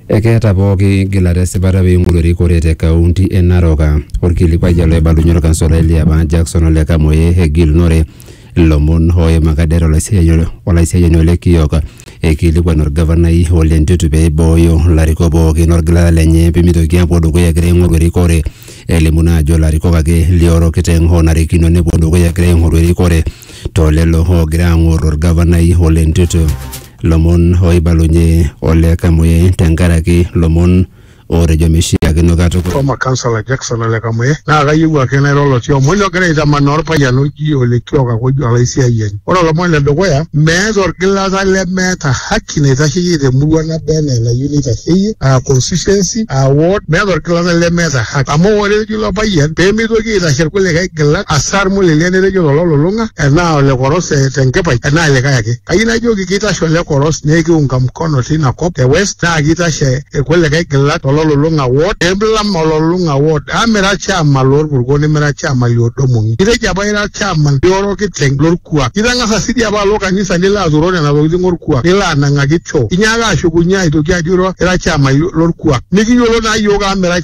Ekeeta pooki gilata esipata pee eing'oru erikore te kaunti e Narok. Olkilikuai ele oibalunye olkansolai liapa Jackson Ole Kamoe egilunore ilomon ooimaka det olaisiyiani Ole Kiok eikilikuan olgavanai Ole Ntutu pee eibooyo ilarikok pooki olgilata lenye pee meitoki aapuo dukuya egira aing'oru erikore elimu naa ajo ilarikok ake le orokiteng oonarikino nepuo dukuya egira aing'oru erikore too lelo oogira aang'or olgavanai Ole Ntutu. Lomon ooibalunye Ole Kamwe tenkaraki lomon ootejo meishiakino katukul. Former councillor Jackson Ole Kamwe, Naa kayieu ake nairo olotii omoni ogira aitamanaa olpayian oji Ole Kioka Kojo olaisiayiani. Ore olomoni le dukuya, meeta olgilata lemeeta haki naitasheyie te murua naba enaa enayieu neitasheyie, aa constituency, aa ward, meeta olgilata lemeeta haki. Amu ore ilo payian pee meitoki aitashe irkulikae gilak asar mulele netejo lolo lulung'a enaa ole koros eh, tenkipai enaa likae ake. Kayieu najoki keitashe ole koros nekiunga mkono teina kop te West naa keitashe irkulikae gilak to lolulung'a ward pee milam ololulung'a ward amu mira olchaama loo lpurko nimira olchaama li Odomong'i. Itejo apa ira olchaama li Orokiteng lo lkuak. Itang'asa sii dii apa alo kanisa nilo aturoo nena tokitin o lkuak nilo anang'aki choo. Inyaaka ashukunye aitoki ajo ira olchaama lo lkuak. Mikiyiolo naa iyiook amu mira olchaama.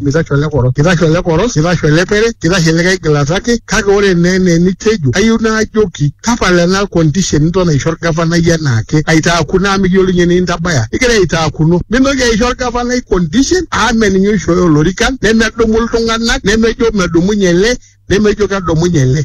mitaxwele koro kitaxwele koro kitaxwele pere kitasheleka aigilata ake kake ore naa enaa enitejo kayieu naajoki tapala ena condition niton aisho orgavanai enaake aitaaku naa mikiyiolo ninye enintabaya igira aitaakuno mintoki aisho orgavanai condition amu meninye oishooyo olorikan nemedumu iltung'anak nemejo medumunye ele nemejo kedumunye ele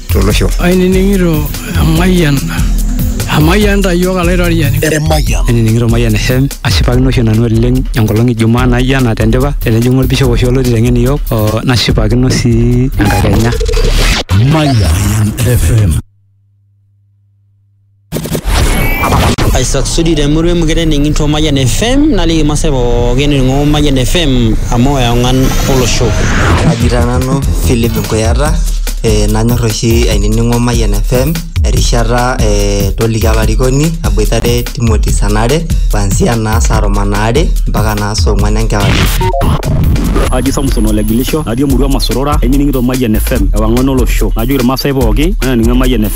tolosho. Ainining'ito emayian emayian ta iyiook alaitoriani. Emayian. Ainining'ito Mayian FM ashipakino oshi nanu oleng enkolong e Jumaa naijo ena tendipa tenejing'u olbishop oshi olo aiteng'en iyiook oo nashipakino sii enkakenya. Mayian FM. Isaac Sudi te murua emukete ening'ito Mayian FM naliki irmaasai pookin ening'o Mayian FM amu eong'an olosho. Kaji taa nanu Philip Nkuyata eh, nanyor oshi ainining'o Mayian FM erishata eh, toliki olarikoni aboitare Timothy Sanare kuanzia naa saa tomon aare mpaka naa saa ong'wan enkewarie. Aji Samson Olegilisho, natii emurua Masorora, ainining'ito Mayian FM, ewang'an olosho. Najoki irmaasai pooki, mayanining'o Mayian FM.